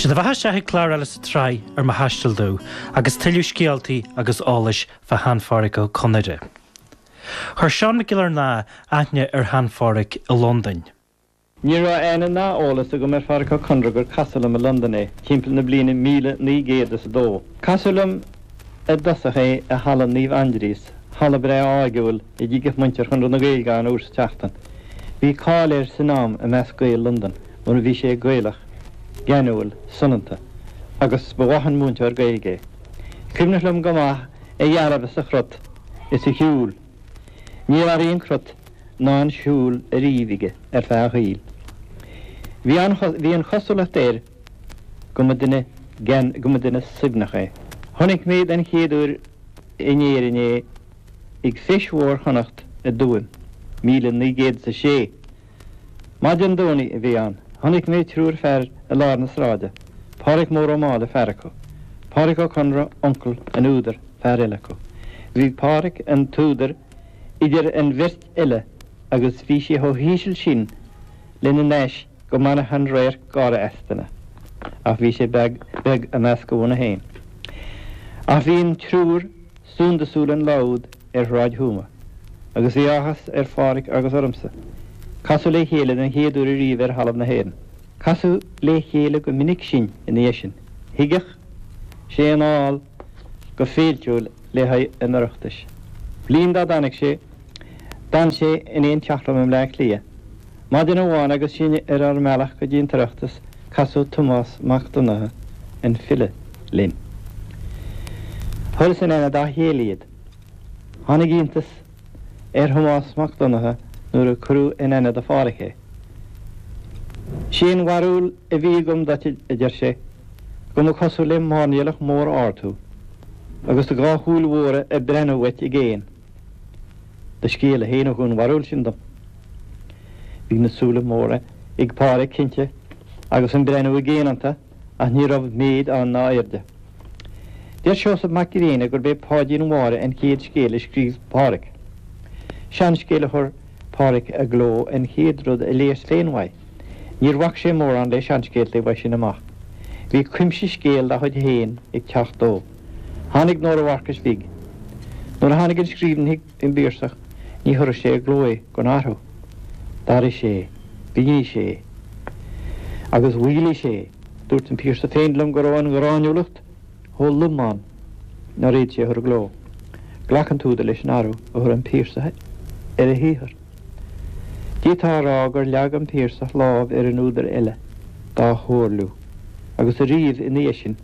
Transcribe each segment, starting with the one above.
Sé do bheathasa chuig clár eile sa tsraith ar mo thaisteal domh agus tuilleadh scéaltaí agus eolais fá Shean-Pháraic Ó Conaire. Chuir Seán Mac Giollarnáth aithne ar Shean-Pháraic i Londain. Ní raibh aithne ná eolas agam ar Pháraic Ó Conaire gur casadh liom i Londain é, timpeall na bliana míle naoi gcéad is a dó. Casadh liom i dtosach é i Halla Naomh Aindrias, halla breá áirgiúil, a dtigeadh muintir Chonradh na Gaeilge ann uair sa tseachtain. Bhí cáil air san am i measc Gaeil Londan mar a bhí sé Gaelach, geanúil, soineanta. Agus ba mhaith an múinteoir Gaeilge é. Cuimhneach liom go maith a dhealbh is a chrot is a shiúl. Níor athraigh an crot ná an siúl ariamh aige ar feadh a shaoil. Bhí an bhí an chosúlacht air go mba duine go mba duine suaimhneach é. Chonaic mé den chéad uair in Éirinn é ag Feis Mhór Chonnacht i dTuaim, míle naoi gcéad is a sé. Maidin Domhnaigh a bhí ann. Chonaic mé triúr fear i lár na sráide, Pádraic Mór Ó Máille fear acu, Pádraic Ó Conaire, uncail an údair, fear eile acu. Bhí Pádraic an t-údar idir an bheirt eile agus bhí sé chomh híseal sin lena n-ais go mbainfeadh an radharc gáire as duine. Ach bhí sé beag, beag i measc a bhunadh féin. Ach bhí an triúr. Suntasúil an lá úd ar Shráid Thuama agus bhí áthas ar Pháraic agus ormsa casadh le chéile den chéad uair ariamh ar thalamh na hÉireann. Casadh le chéile go minic sinn ina dhiaidh sin. Thigeadh sé anall go féiltiúil le haghaidh an Oireachtais. Bliain dá dtáinig sé, d'fhan sé in aon teach liom i mBleá Cliath. Maidin amháin agus sinn ar ár mbealach go dtí an tOireachtas casadh Tomás Mac Donnchadha, an file, linn. Chuireas in aithne dá chéile iad. Tháinig iontas ar Thomás Mac Donnchadha nuair a cuireadh in aithne do Phádhraic é. 'Sé an bharúil a bhí agam duit, a deir sé, go mba cosúil le máirnéalach mór ard thú agus do dhá shúil mhóra ag breathnú uait i gcéin. Do scéalta féin a thug an bharúil sin dom. Bhí na súile móra ag Pádraig cinnte agus an breathnú i gcéin iontu ach ní raibh méid ann ná airde. Deir Seosamh Mac Grianna gurb é Páidín Mháire an chéad scéal a scríobh Pádraig. Seanscéal a chuir Pádraig i gcló an chéad rud a léas féin uaidh. Níor bhac sé mórán le seanscéalta uaidh sin amach. Bhí cuimse scéal dá chuid féin ag teacht dó. Tháinig Nóra Mharcais Bhig. Nuair a tháinig an scríbhinn chuig an bPiarsach ní chuirfeadh sé i gcló é gan athrú. D'athraigh sé é. Mhínigh sé é. Agus mhaolaigh sé é. Dúirt an Piarsach féin liom go raibh an ghráiniúlacht chomh lom ann nár fhéad sé a chur i gcló. Ghlac an t-údar leis an athrú a chuir an Piarsach ar a shaothar. D'fhéadfá a rá gur leag an Piarsach lámh ar an údar eile dá chomhairliú agus ariamh ina dhiaidh sin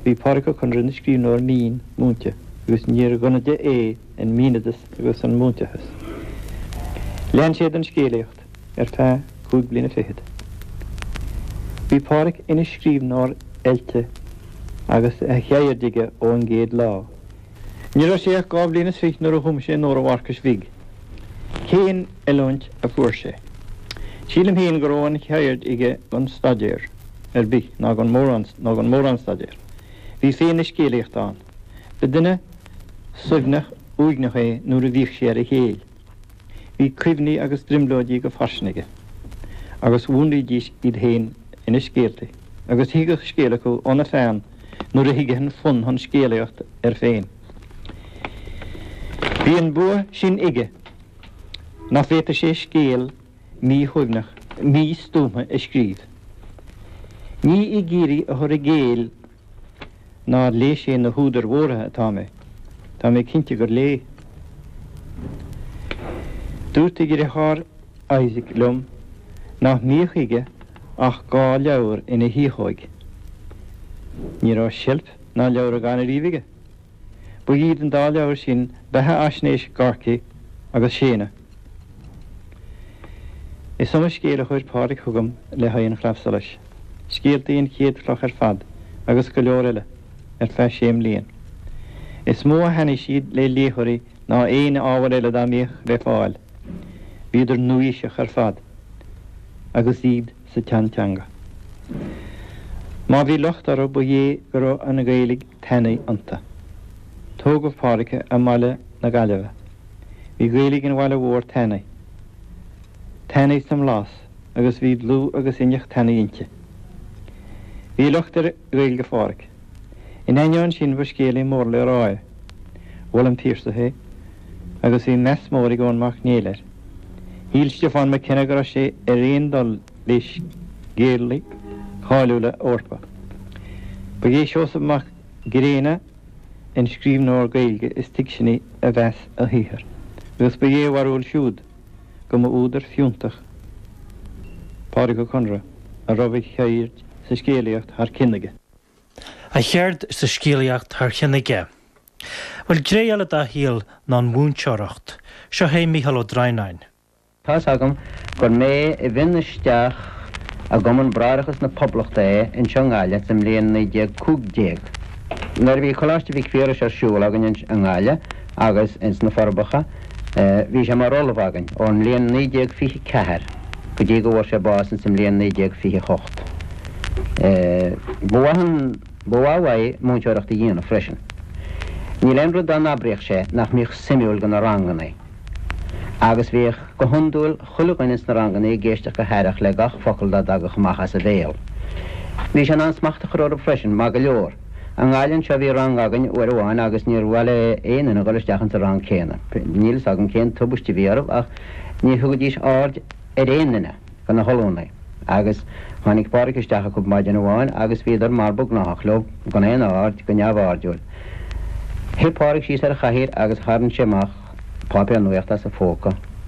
Bhí Pádraig Ó Conaire ina scríbhneoir mín, múinte, agus níor dhonaide é an míneadas agus an múinteachas. Lean sé den scéalaíocht ar feadh cúig bliana fichead. Bhí Pádraig ina scríbhneoir oilte agus a cheird aige ón gcéad lá. Ní raibh sé ach dhá bhliain is fiche nuair a chum sé Nóra Mharcais Bhig. Cén oiliúint a fuair sé? Sílim féin go raibh an cheird aige gan staidéar ar bith ná ná gan mórán staidéar. Bhí féith na scéalaíochta ann. Ba duine suaimhneach uaigneach é nuair a bhíodh sé ar a chéill. Bhí cuimhní agus brionglóidí go fairsing aige agus mhúnlaídís iad féin ina scéaltaí agus thigeadh scéal acu óna pheann nuair a thigeadh an fonn chun scéalaíocht air féin. Bhí an bua sin aige nach bhféadfadh sé scéal míshuaimhneach, místuama a scríobh. Ní ag iarraidh a chur i gcéill nár léigh sé na húdair mhóra atá mé, tá mé cinnte gur léigh. Dúirt a dheartháir Isaac liom nach mbíodh aige ach dhá leabhar ina thiachóig. Ní raibh seilf ná leabhragán ariamh aige. Ba iad an dá leabhar sin beathaisnéis Gorky agus Séadna. Is iomaí scéal a chuir Pádraig chugam le haghaidh an Chlaidheamh Solais, scéaltaí An Chéad Chloch ar fad agus go leor eile ar feadh sé mbliain. Is mó a thaitnigh siad le léitheoirí ná aon ábhar eile dá mbíodh le fáil. Bhíodar nua-aoiseach ar fad agus iad sa tseanteanga. Má bhí locht orthu ba é go raibh an Ghaeilig tanaí iontu. Tógadh Pádraig i mBaile na Gaillimhe. Bhí Gaeilig an bhaile mhóir tanaí. Tanaí sa mblas agus bhí dlúth agus inneach tanaí inti. Bhí locht ar Ghaeilge Phádraig. In ainneoin sin ba scéalaí mór le rá é. Mhol an Piarsach é agus bhí meas mór ag Eoin Mac Néill air. Shíl Stiofán Mac Enna go raibh sé ar aon dul le scéalaithe cáiliúla Eorpa. Ba é Seosamh Mac Grianna an scríbhneoir Gaeilge is tuigsiní a mheas a shaothar agus ba é a bharúil siúd go mba údar fiúntach Pádraig Ó Conaire a raibh a cheird sa scéalaíocht thar cionn aige. A cheird sa scéalaíocht thar chionn aige. Bhuel, gné eile dá shaol ná an mhúinteoireacht. Seo é Mícheál Ó Droighneáin. Tá's agam gur mé a mhionnaigh isteach i gCumann Bráithreachas na Poblachta é anseo i nGaillimh sa mbliain 1915, nuair a bhí Coláiste Mhic Phiarais ar siúl againn i nGaillimh agus ins na Forbacha. Bhí sé mar ollamh againn ón mbliain 1924 go dtí go bhfuair sé bás ins an mbliain 1928. Ba mhaith an, ba mhaith uaidh múinteoireacht a dhéanamh freisin. Níl aon rud dá n-abraíodh sé nach mbíodh suimiúil go na rangannaí. Agus bhíodh, go hiondúil, chuile dhuine ins na rangannaí ag éisteacht go haireach le gach focal dá dtagadh amach as a bhéal. Bhí sé in ann smacht a chur orthu freisin, maith go leor. I nGaillimh anseo bhí rang againn uair amháin agus níor mhaith le aon duine dhul isteach ins an rang céanna. Níl fhios agam cén tubaiste a bhí orthu ach ní thugaidís aird ar aon duine go na hollúnaí agus tháinig Pádraig isteach acub maidin amháin agus bhíodar mar ba gnáthach leob gan aon aird, go neamh-airdiúil. Shuigh Pádraig síos ar chathaoir agus tharraing sé amach páipéar nuaíochta as a phóca.